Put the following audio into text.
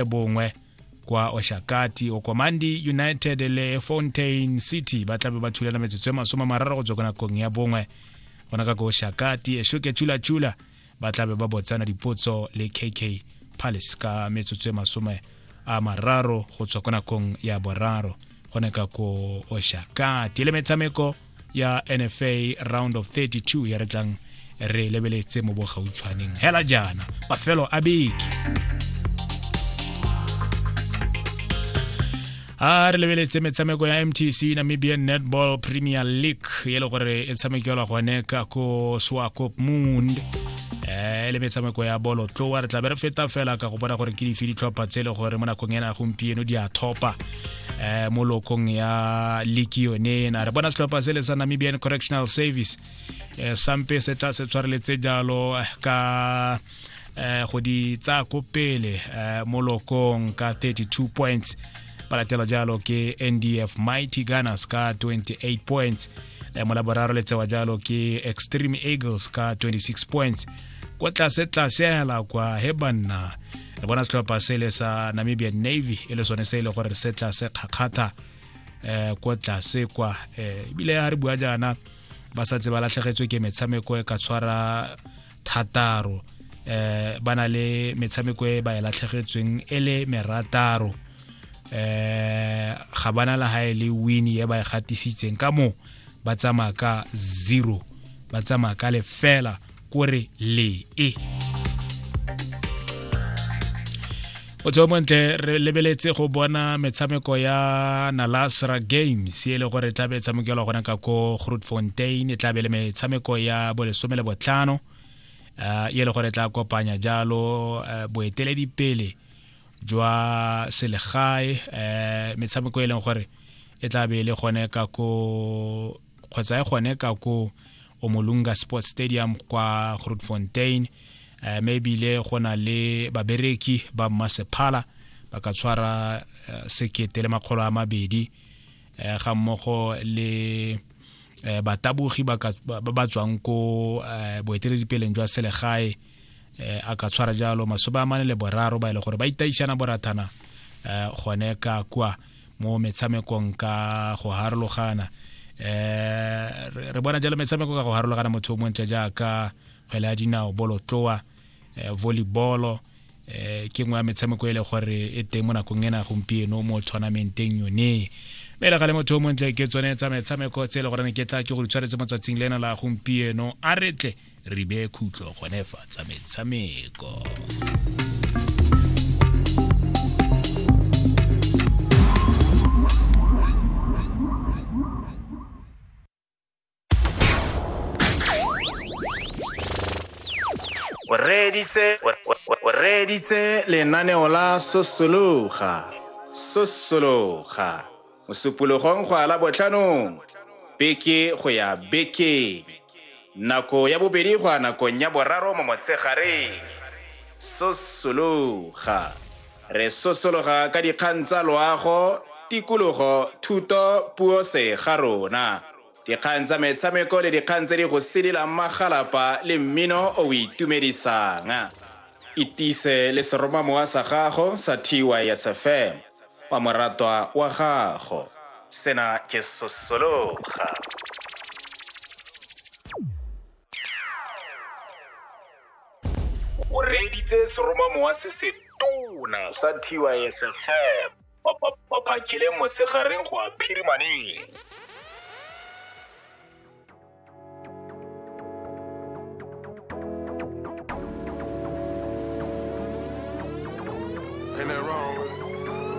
e bongwe kwa oshakati okomandi united le fontain city ba tlabe ba thulana metsotso e masome mararo go tswa ko nakong ya bongwe gona ka ko oshakati eshoke chulachula ba tlabe ba botsana dipotso le kk palace ka metsotso e masome a mararo go tswa ko nakong ya boraro gone ka ko oshakati le metshameko ya nfa round of 32 ya re tlang re lebeletse mo bogautshwaneng hela jaana mafelo a beke a re lebeletse metshameko ya mtc namibian netball premier league e le gore e tshamekelwa gone ka ko swakop moond e le metshameko ya bolo tloa re tlabe re feta fela ka go bona gore ke dife ditlhopha tse e le gore mo nakong ena gompieno di a thopa eh, mo lokong ya liki yone ena re bona setlhopha se le sa namibian correctional service eh, sampe se tla se tshwareletse jalo eh, ka eh, go di tsaya ko pele eh, mo lokong ka 32 points ba latela jalo ke ndf mighty gunners ka 28 points eh, mo laboraro le tsewa jalo ke extreme eagles ka 26 points kwa tlase tlase hela kwa he banna re bona setlhopha se le sa namibian navy e le sone se e le gore se tla se kgakgatha um ko tlase kwa um ebile ga re bua jaana ba sa tse ba latlhegetswe ke metshameko e ka tshwara thataro eh ba na le metshameko e ba e latlhegetsweng e le merataro eh ga bana la ha e le win e ba e gatisitseng ka mo ba tsamaya ka zero ba tsamaya ka lefela kore le e motho o montle re lebeletse go bona metshameko ya nalasra games e le gore e tlabe e tshamekelwa gona ka ko groot fontain e tlabe le metshameko ya bolesome le botlhano uh, e le gore e tla kopanya jalo uh, boeteledipele jwa selegae uh, metshameko e leng gore e tlabe e le gone ka ko kgotsa e gone ka ko omolunga sports stadium kwa grootfontein uh, me ebile go na le babereki ba mmasephala ba ka tshwara uh, sekete le makgolo a mabedi uh, ga mmogo le uh, batabogi ba ba tswang ko uh, boeteledipeleng jwa selegae eh, a ka tshwara jalo masome a mane le boraro ba e le gore ba itaišana borathana eh, gone ka kwa mo metshamekong ka go harologana eh re bona jalo metshameko ka go harologana motho o montle jaaka kgwele ya dinao bolotloa eh, volleyball eh ke nngwe ya metshameko e le gore e teng mo nakong ena gompieno mo tournamenteng yone mme le gale motho o montle ke tsone tsa metshameko tse e le goreng ke tla ke go ditshwaretse mo tsatsing lena la gompieno a retle re beye khutlo gone fa tsa metshameko o reditse lenaneo la sosologa sosologa Mosupologong go ala botlhanong, beke go ya bekeng, nako ya bobedi go ya nakong ya boraro mo motshegareng. Sosologa. Re sosologa ka dikgang tsa loago, tikologo, thuto, puo se ga rona, dikgang tsa metshameko le dikgang tse di go sidilang magalapa le mmino o o itumedisang. Itise le seromamowa sa gago sa TYSFM. wa moratwa wa gago sena ke sosologa o reeditse seromamowa se se tona sa tysfm o phakile mosegareng go a phirimaneng